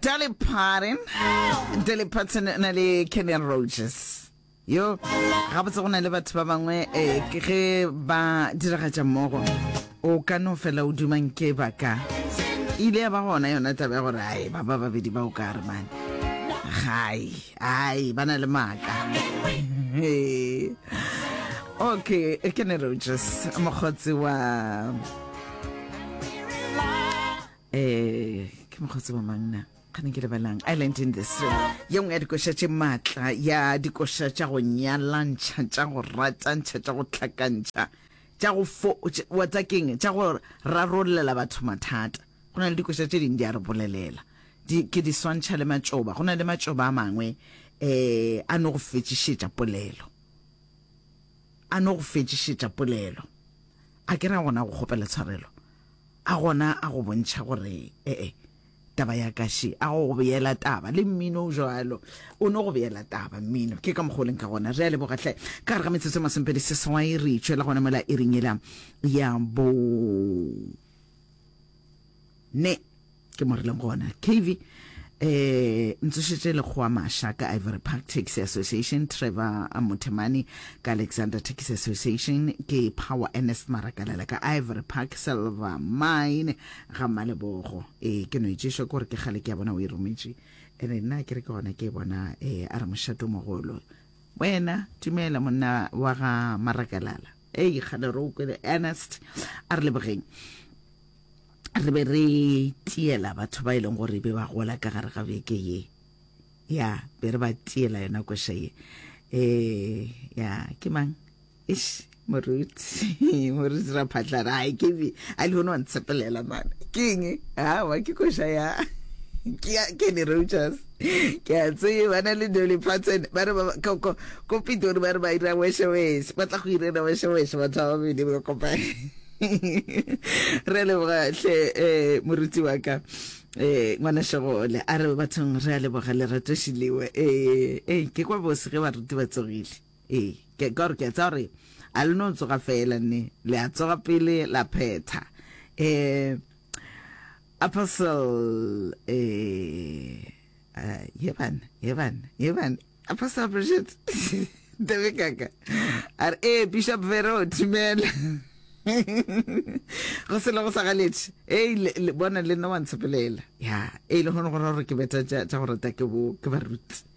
Dolly Parton. Dolly Parton na le Kenny Rogers. Yo, ga botse go na le batho ba bangwe eh, ke ge ba diragatša mmogo o ka no fela o dumang ke ba ka e ile ya ba gona yona taba ya gore ai ba ba babedi ba o ka re mane gai ai ba na le maaka Hey. okay Kenny Rogers mokgotsi wa Eh, ke mokgotsi wa mang na kgane ke lebelang i learned in this ye nngwe ya dikoša tše maatla ya dikoša tša go nyalantšha tša go ratantšha tša go tlhakantšha tša go fo tš- wa tsa keng tša go rarollela batho mathata go na le dikoša tše dingwe di a re bolelela di, ke di swantšha le matšoba go na le matšoba a mangwe um a no go fetšišetša polelo a no go fetšišetša polelo a ke ra gona go kgopela tshwarelo A gona a go bontšha gore ee, taba ya ka še, a go beela taba. Le mmino o jalo, o no go beela taba mmino. Ke ka mokgwa o leng ka gona. Re a leboga hle. Ka gare ga metsotso e masomepedi seswai re itšwela gona mola iring yela ya bo ne. ke mo rileng gona kv eh ntsošetse lekgowa masha ka ivory park taxi association trevor mothemane ka alexander taxi association ke power ernest marakalela ka ivory park silver mine ga malebogo e ke no itšešo ke gore ke gale ke ya bona o e rometše ene nna ke re ke gona ke e bona e a re mošato mogolo wena tumela monna wa ga marakalala ei gana re o kwele ernest a re lebogeng re be re tiela batho ba e leng gore be ba gola ka gare ga beke ye ya be re ba tiela yona kwesha ye um ya ke mang ish moruti moruti ra phatlana ai ke be a le one wa ntshepelela mana ke eng awa ke kwesha ya ke ne re ke a tseye ba na le dolly patten ba re ko pitori ba re ba ira wesheweshe ba tla go irela wesheweshe batho ba babedi ba kopane re leboga hle um moruti wa ka eh ngwana shogole a re bathong re a leboga lerato shiliwe eh eh ke kwa bose ge baruti ba tsogile eh ke gore ke tsa gore a le no tsoga fela ne le a tsoga pele la phetha eh A parcel eh a ye bana ye bana ye bana a parcel Bridget Tebe kaka a re eh Bishop Vero timela go selo go sa galetše ei le bona le nna wa ntshepelela ya ei le gone go ra gore ke beta tša go rata ke bo ke baruti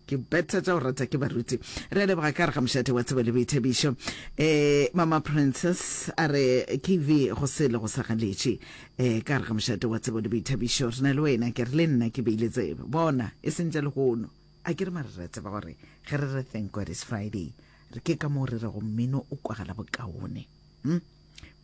ke betha tša go rata ke baruti re leboga ka re ga mošate wa tsebo le boithabišo um mama princess a re kv go se le go sa galetše um ka re ga mošate wa tsebo le boithabišo re na le wena ke re le nna ke beile tsebo bona e seng tša lehono a ke re mare re tseba gore ge re re thank god is friday re ke ka moo re rego mmino o kwagala bokaone hmm?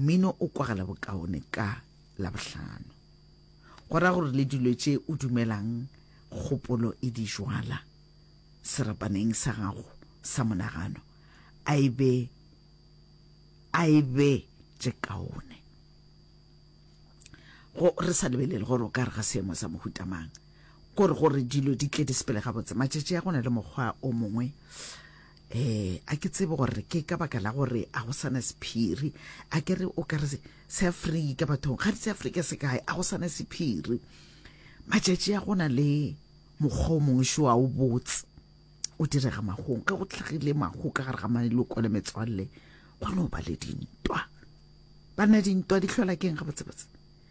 mmino o kwagala bokaone ka labohlano go ra gore le dilo tše o dumelang kgopolo e di jwala serapaneng sa gago sa monagano a e be a e be tše kaone go re sa lebelele gore o ka re ga seemo sa mohutamang kore gore dilo di tle di sepele gabotse matšatši a gona le mokgwa o mongwe um a ke tsebe gore ke ka baka la gore a go sana sephiri a ke re o ka re seafrika bathong ga di seafrika se kae a go sana sephiri matšatši a gona le mokgwa o mongwe šo a o botse o direga magong ge go tlhagile mago ka gare ga maloko le metswalle go no ba le dintwa banna dintwa di tlhola keng ga botsebotse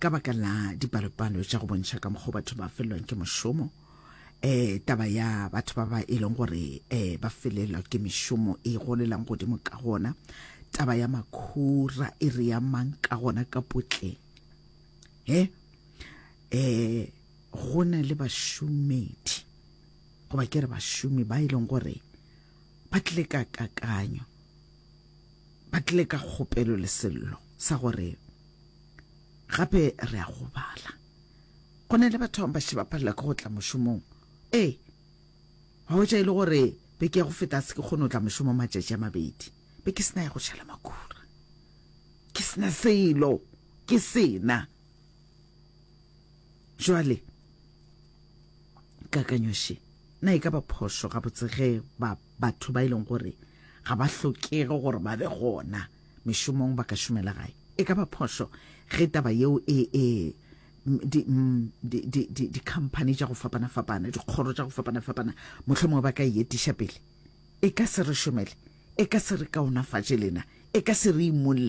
ka baka la dipalopalo tša go bontšha ka mokgwa batho ba felelwang ke mošomo eh taba ya batho ba ba e leng gore eh ba felelwa ke mešomo e golelang godimo ka gona taba ya makhura e re ya mang ka gona ka potle he eh go na le bašomedi goba ke re bašomi ba e leng gore ba tlile ka kakanyo ba tle ka kgopelo le sello sa gore gape re a go bala. Go na le batho ba šeba palela ke go tla mošomong. Ee, wa hwetša e le gore beke ya go feta se ke kgone go tla mošomo matšatši a mabedi. Be ke sena ya go šala makura. Ke sena selo. Ke sena. Jwale. kakanyoše na e ka ba phošo ga botsege ba batho ba ileng e gore ga ba hlokege gore ba be gona mešomong ba ka šomela gae e ka ba phošo ge taba yeo e e di-company mm, tša go fapana-fapana dikgoro tša go fapana-fapana motlho mongwe ba ka e etiša pele e ka se re šomele e ka se re kaonafatše lena e ka se re imolle